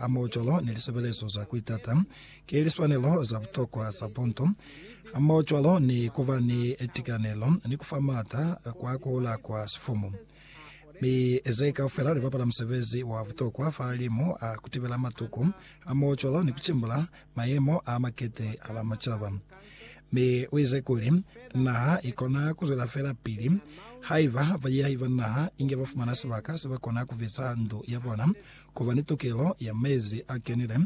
a maocolo ni lisebelezo za kuitata ki liswanelo za butokwa za buntu, hamohocwalo ni kuba ni tikanelo ni kufa maata kwa kuhula kwa sifumu. Mi ze kaufela libapala musebezi wa butokwa fahalimu a kutibela matuku hamohocwalo ni kucimbula mayemo a makete hala macaba. Mi uize kuli, Naha ikona kuzwela feela pili haiba baiyahibanaha inge bafumana sibaka sebakona kubiza ndu yabona Ku ba ni tukelo ya mezi a kenile,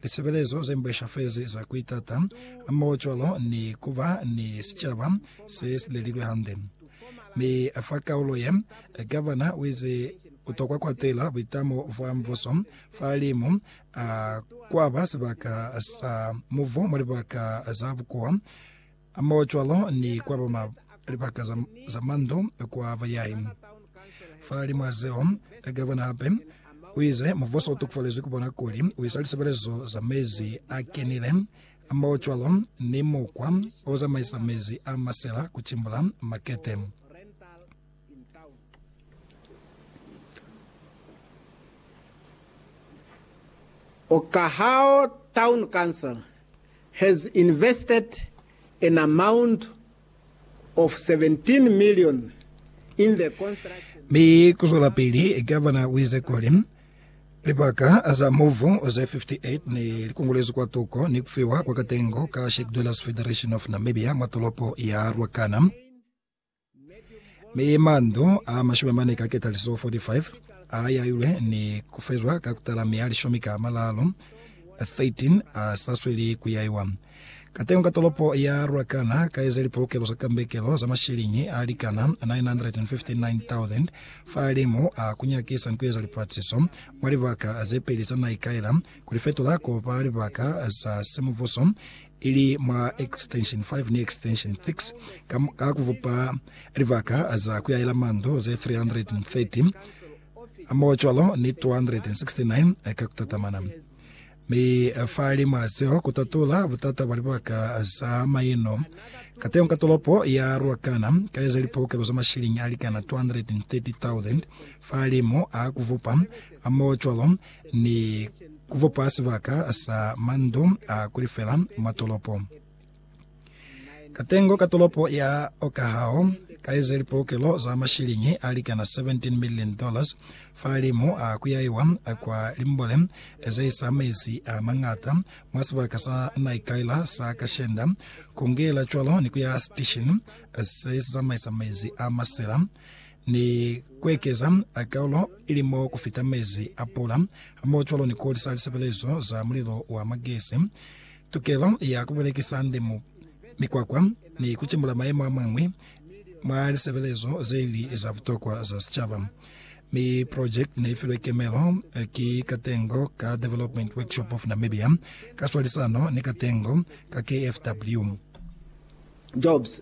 lisebelezo ze mbweshafezi za ku itata, hamohocwalo ni ku ba ni sicaba se si lelilwe hande. Mi fa kaulo ye, gavana u ize ku tokwa kwatela buitamo bwa mbuso fa limu a kwaba sibaka sa mubu mwa libaka za bukuwa. Hamohocwalo ni kwa ba ma libaka za, za mandu kwa bayahi. Fa limwa zeo, Gavana hape uize mubuso utokofalezwi kubona kuli uisa lisebelezo za mezi a kenile hamohocwalo ni mukwa ozamaisa mezi a masela kucimbula makete. in town. Okahao Town Council has invested an amount of 17 million in the construction. Mi kuzwelapili Governor uize kuli libaka za muvu ze 58 ne likungulezwi kwa tuko ni kufiwa kwa katengo ka Shack Dwellers Federation of Namibia mwa tolopo ya Ruacana. Mi mandu a mashumi mane ka ketaliso 45 a yailwe ni kufezwa ka kutala mi a lishumi ka malalu 13 a sa sweli kuyaiwa. Katengo ka tolopo ya Ruacana ka eze lipolokelo za kambekelo za mashiliñi a likana 959,000 fahalimu a kunyakisa ni kueza lipaciso mwa libaka zepeli za naikaela, kulifetula kuba libaka za simubuso ili mwa extension 5 ni extension 6 ka, ka kuvupa libaka za kuyahela mandu ze 330 hamohocwalo ni 269 ka kutatamana. Mi fali mwa zeo kutatula butata bwa libaka za maino kateñi ka tolopo ya Ruacana ka eza lipookelo za mashilingi alikana 230,000 fali mo a kuvupa hamohocwalo ni ku bopa sibaka sa mandu a ku lifela mwa tolopo. Katengo ka tolopo ya Okahao ka ize lipolokelo za mashiliñi a likana 17 million dollars fahalimu a ku yaiwa kwa limbole ze isa mezi a mañata mwa sibaka sa Naikaila sa Kashenda, ku ngela cwalo ni ku ya sitishini se si zamaisa mezi a masela ni kuekeza akaulo ili mo kufita mezi a pula, hamohocwalo ni kuholisa lisebelezo za mulilo wa magesi, tukelo ya kubelekisa ndimo, mikwakwa, ni kucimula mayemo amañwi mwa lisebelezo zeili za butokwa za sicaba. Mi project neifilwe kemelo ki Katengo ka Development Workshop of Namibia ka swalisano ni Katengo ka KFW. Jobs.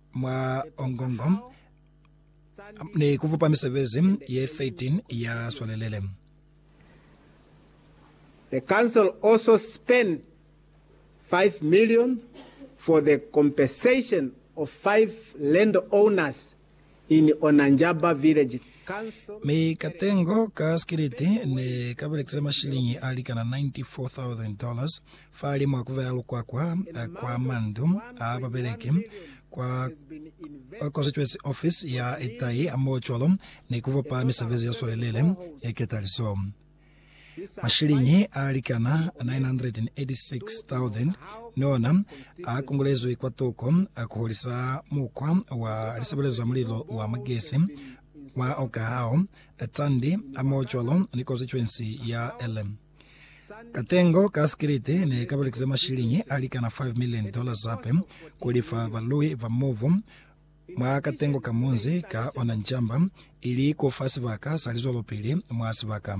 Mwa Ongongo ni kubupa misebezi ye 13 ya swalelele. The council also spent five million for the compensation of five landowners in Onanjaba Village Council. Mi katengo ka sikiliti ne ka belekisa mashiliñi a likana 94,000 dollars Fahalimu a kubeya lukwakwa kwa mandu a babeleki kwa Constituency Office ya Itai hamohocwalo ni kubopa misebezi ya swalelele ya ketaliso, mashiliñi a likana 986,000 ni ona a kongolezwi kwa toko ku hulisa mukwa wa lisebelezo za mulilo wa magesi wa Okahao, Tsandi hamohocwalo ni Constituency ya Ele. Katengo ka sikiliti ne ka belekisa mashiliñi a likana 5 milioni dola zape ku lifa balui ba mubu mwa katengo ka munzi ka ona ncamba, ili ku fa sibaka sa lizwelopili mwa sibaka.